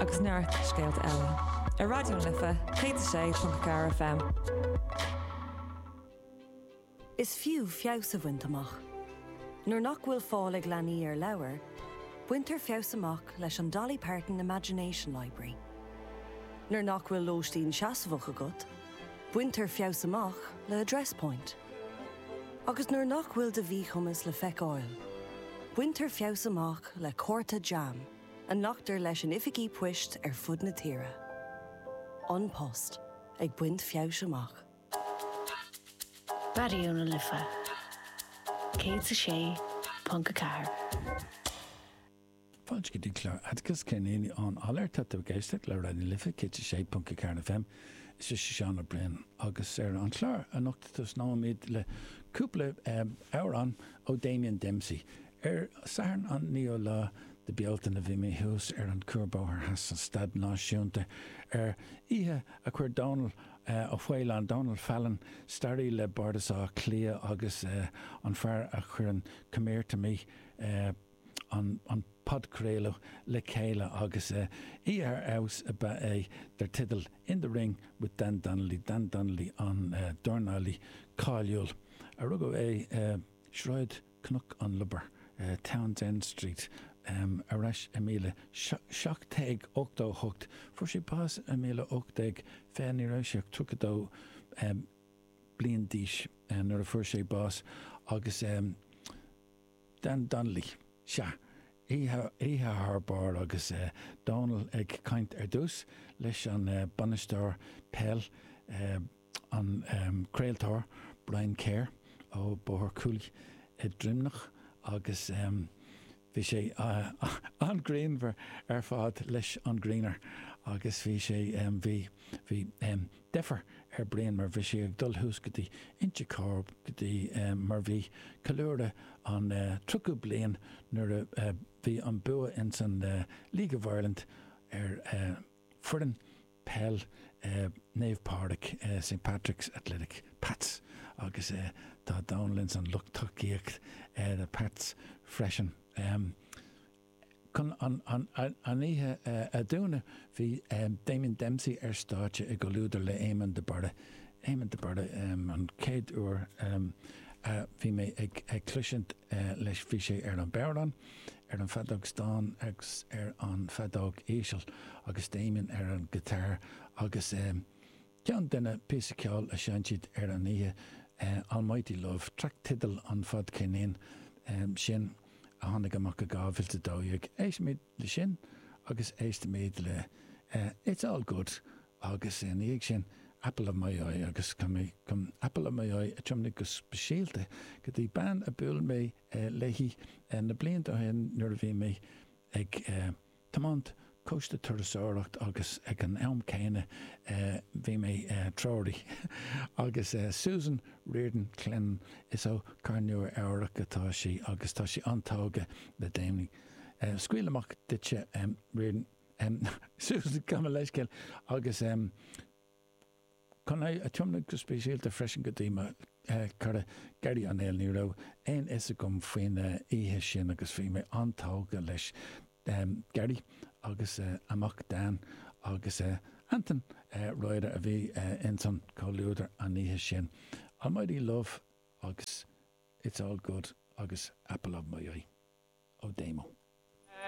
agus neart scéalta eile ar Raidió na Life 106.4 FM. Is fiú feabhas a bhaint amach. Nuair nach bhfuil fáil ag leanaí ar leabhair, baintear feabhas amach leis an Dolly Parton Imagination Library. Nuair nach bhfuil lóistín seasmhach agat, baintear feabhas amach le Address Point. Agus nuair nach bhfuil do mhíchumas le feiceáil, baintear feabhas amach le cárta JAM. a nglactar leis in oifigí poist ar fud na tíre. An Post ag baint feabhais amach. Raidió na Life 106.4. Fáilte go dtí clár Atticus, Céard a dhéanfaidh Ann Allaire? Tá tú ag éisteacht le Raidió na Life 106.4 FM. Is mise Seán Ó Briain agus ar an chlár anocht tosnóimid le cúpla amhrán ó Damien Dempsey. Ar Satharn an naoú lá de Bealtaine bhí mé thuas ar an Cuarbhóthar Theas sa Staid Náisiúnta ar oíche a chuir Dónall Ó Faoláin, Donal Fallon, staraí le Bardas Átha Cliath agus an fear a chuireann Come Here To Me, an podchraoladh, le chéile agus oíche ar fheabhas ab ea é dar teideal In the Ring with Dan Donnelly, Dan Donnelly an dornálaí cáiliúil a rugadh é i Sráid. Cnoc an Lobhair, Townsend Street, ar ais i míle seacht déag ochtó a hocht. Fuair sé bás i míle ocht déag fiche, ní raibh sé ach tríocha dó bliain d'aois nuair a fuair sé bás, agus Dan Donnelly, sea, oíche thar barr agus Dónall ag caint ar dtús leis an bainisteoir peil. an craoltóir Brian Kerr ó Bóthar Cooley, Droimneach agus bhí sé an-ghreannmhar ar fad leis an Greener agus bhí sé, bhí, bhí deifir ar Brian mar bhí sé ag dul thuas go dtí Inse Chór go dtí, mar bhí ceiliúradh an tríochadú bliain nuair a bhí an bua ins an League of Ireland ar, foireann peil Naomh Pádraig, St Patrick's Athletic, Pats, agus tá Dónall ins an lucht tacaíochta ar na Pats freisin. Chun an oíche a dúnadh bhí Damien Dempsey ar stáitse i gcomhluadar le Éamonn de Barra, Éamonn de Barra an chéad uair a bhí mé ag cloisint leis bhí sé ar an bodhrán, ar an feadóg stáin agus ar an feadóg íseal, agus Damien ar an guitar agus ceann de na píosaí ceoil a sheinn siad ar an oíche, Almighty Love, traic tideal an fadcheirnín sin a tháinig amach i 2012. Éistimid le sin agus éistimid le It's All Good agus ina dhiaidh sin Apple of My Eye agus Apple of My Eye a tiomnaigh go speisialta go dtí bean a bhuail mé léi na blianta ó shin nuair a bhí mé ag tiomáint cóiste turasóireachta agus ag an am céanna bhí mé treoraí agus Susan Riordan Clinton, is ó Cathair Nua Eabhrac atá sí agus tá sí an-tógtha le Damien. Scaoil amach duitse Susan, gabh mo leithscéal agus. Chun é a thiomnadh go speisialta freisin go dtí mo chara Gerry Ó Néill, ní raibh aon fhios agam faoin oíche sin agus bhí mé an-tógtha leis Gerry agus a mhac Dan agus Antain Roederer a bhí ins an chomhluadar an oíche sin. Almighty love agus it's all good agus apple of my eye. Ó Damo.